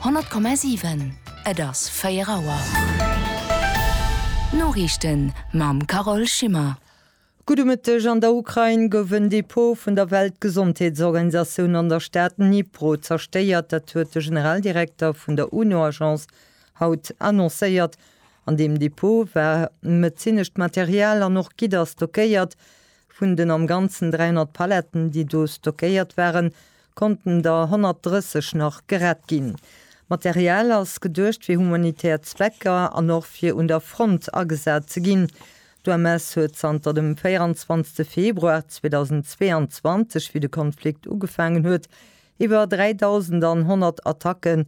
100,7 Et ass 4 Auer. D'Noriichten mam Carole Schimmer. Gudde Mëtteg, An der Ukrain gouf en Depot vun der Weltgesondheetsorganisatioun an der Stad Dnipro zerstéiert. Dat huet de Generaldirekter vun der UNO-Agence haut annoncéiert. An deem Depot war medezinescht Material an och Gidder stockéiert. Vun den am Ganzen 300 Paletten, déi do stockéiert waren, konnten der 130 nach gerett ginn. D'Material ass geduecht fir humanitär Zwecker an och fir un der Front agesat ze ginn. D'UMS huet zanter dem 24 Februar 2022, wéi de Konflikt ugefaangen huet, iwwer 3.100 Attacken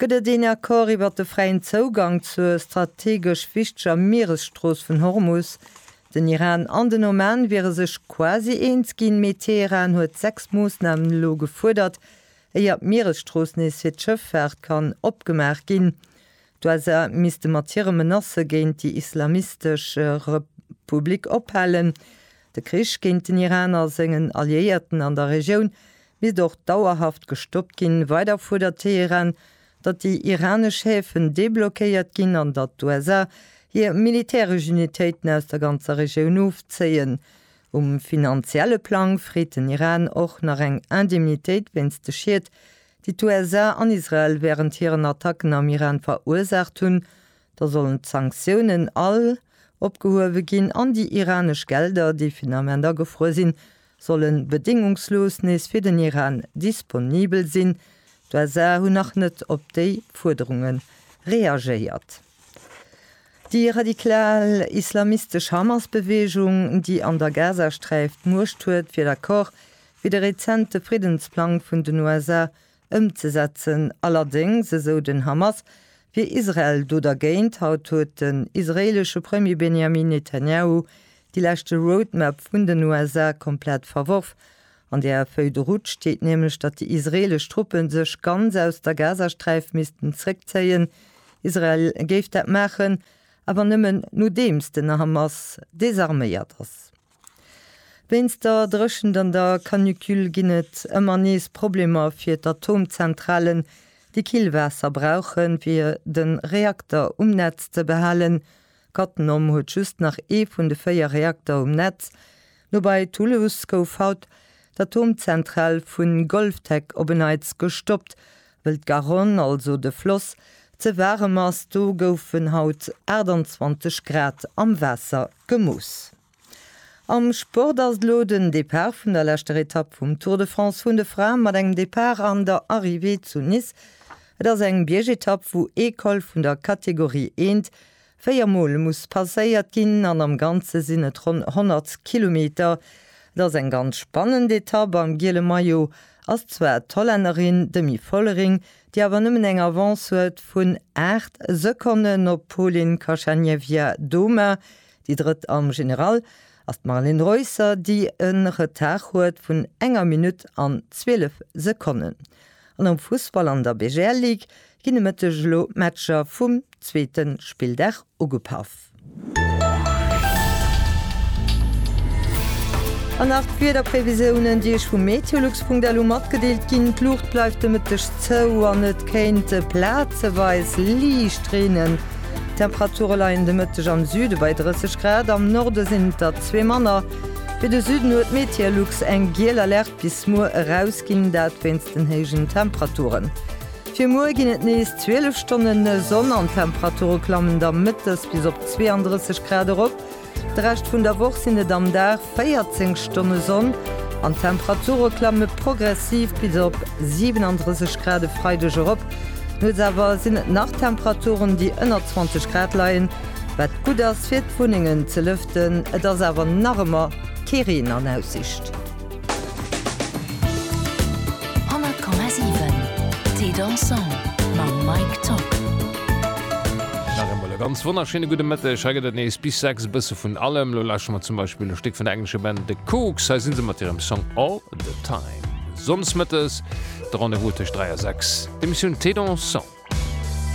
Gëtt et een Accord iwwert de fräien Zougang zur strategesch wichteger Mieresstrooss vun Hormus? Den Iran an den Oman wiere sech quasi eens ginn, mee Teheran huet sechs Moossnamen elo gefuerdert, éier d'Mieresstrooss nees fir d'Schëffaart kann opgemaach ginn. D'USA misste mat hire Menacë géint déi islamistesch Republik ophalen. De Krich géint den Iran a sengen Alliéierten an der Regioun misst och dauerhaft gestoppt ginn. Weider fuerdert Teheran, datt déi iranesch Häfen deblockéiert ginn an datt d'USA hir militäresch Unitéiten aus der ganzer Regioun ofzéien. Um finanzielle Plang freet den Iran och nach eng Indemnitéit wéinst de Schied, déi d'USA an Israel wärend hiren Attacken am Iran verursaacht hunn. Da sollen d'Sanktiounen all opgehuewe ginn an déi iranesch Gelder, déi vun Ament agefruer sinn, sollen bedéngungslos nees fir den Iran disponibel sinn. D'USA hunn nach net op déi Fuerderunge reagéiert. Déi radikal islamistesch Hamas-Beweegung, déi an der Gazasträif d'Muecht huet, wier d'accord, wéi de rezente Friddensplang vun den USA ëmzesetzen. Allerdéngs, esou den Hamas, wier Israel do dergéint. Haut huet den israeelesche Premier Benjamin Netanyahu déi leschte Roadmap vun den USA komplett verworf. An där Feuille de route steet nämlech, datt déi israeelesch Truppe sech ganz aus der Gazasträif missten zréckzéien. Israel géif dat maachen, awer nëmmen nodeems den Hamas desarméiert ass. Wéinst der Dréchent an der Canicule ginn et ëmmer nees Problemer fir d'Atomzentralen, déi kill Waasser brauchen, fir de Reakter um Netz ze behalen. Cattenom huet just nach ee vun de véier Reakter um Netz. Nobäi Toulouse gouf haut d'Atomzentral vu Golftek op en Neits gestoppt, Well d'Garonne, also de Floss, ze waarem ass, do goufen haut 28 Grad am Waasser gemooss. Am Sport ass et elo den Depart vun der leschter Etapp vum Tour de France vun de Fraen, mat engem Depart an der Arrivée zu Nice. Et ass eng Biergetapp, wou ee Col vun der Kategorie I Véier Mol muss passéiert ginn an am Ganze sinn et ronn 100 Kilometer. Et ass eng ganz spannend Etapp. Am giele Maillot ass zwar d'Hollännerin Demi Vollering, déi awer nëmmen eng Avance huet vun 8 Sekonnen op d'Polin Kashanievia Doma, déi Drëtt am General ass d'Marlen Reusser, déi e Retard huet vun enger Minutt an 12 Sekonnen. An am Fussball an der BGL Ligue ginn e Mëtteg elo d'Matcher vum zweete Spilldag ugepaff. An nach d'Wiederprevisiounen, déi Iech vu meteolux.lu matgedeelt ginn, D'Luucht bleift de Mëtteg zou an et kéint plazeweis liicht reenen. D'Temperature leien de Mëtteg am Süde bei 30 Grad, am Norde sinn et der zwee manner. Fir de Süden huet d'Meteolux eng giel Alerte. Bis muer eraus ginn, dat wéinst den héijen Temperaturen. Fir muer ginn et nees 12 Stonne Sonn an d'Temperature klammen da mëttes bis op 32 Grad erop. De Rescht vun der Woch sinn et am Dag 14 Stonne Sonn an d'Temperature klamme progressiv bis op 37 Grad e Freideg erop. Nuets awer sinn et nach Temperaturen, déi ënner 20 Grad leien, wat gutt ass fir d'Wunnengen ze lëften. Et ass awer nach ëmmer kee Reen an Aussicht. 100,7 Thé dansant mam Mike Tock. Nach eemol e ganz wonnerschéine gudde Mëtteg. Hei gëtt et nees bis 6 e bësse vun allem. Lo lauschte mer zum Beispill e Stéck vun der englescher Band The Kooks. Hei si se mat hirem Song All the Time. Sonndes mëttes de Rendez-vous tëscht 3 a 6, d'Emissioun Thé dansant.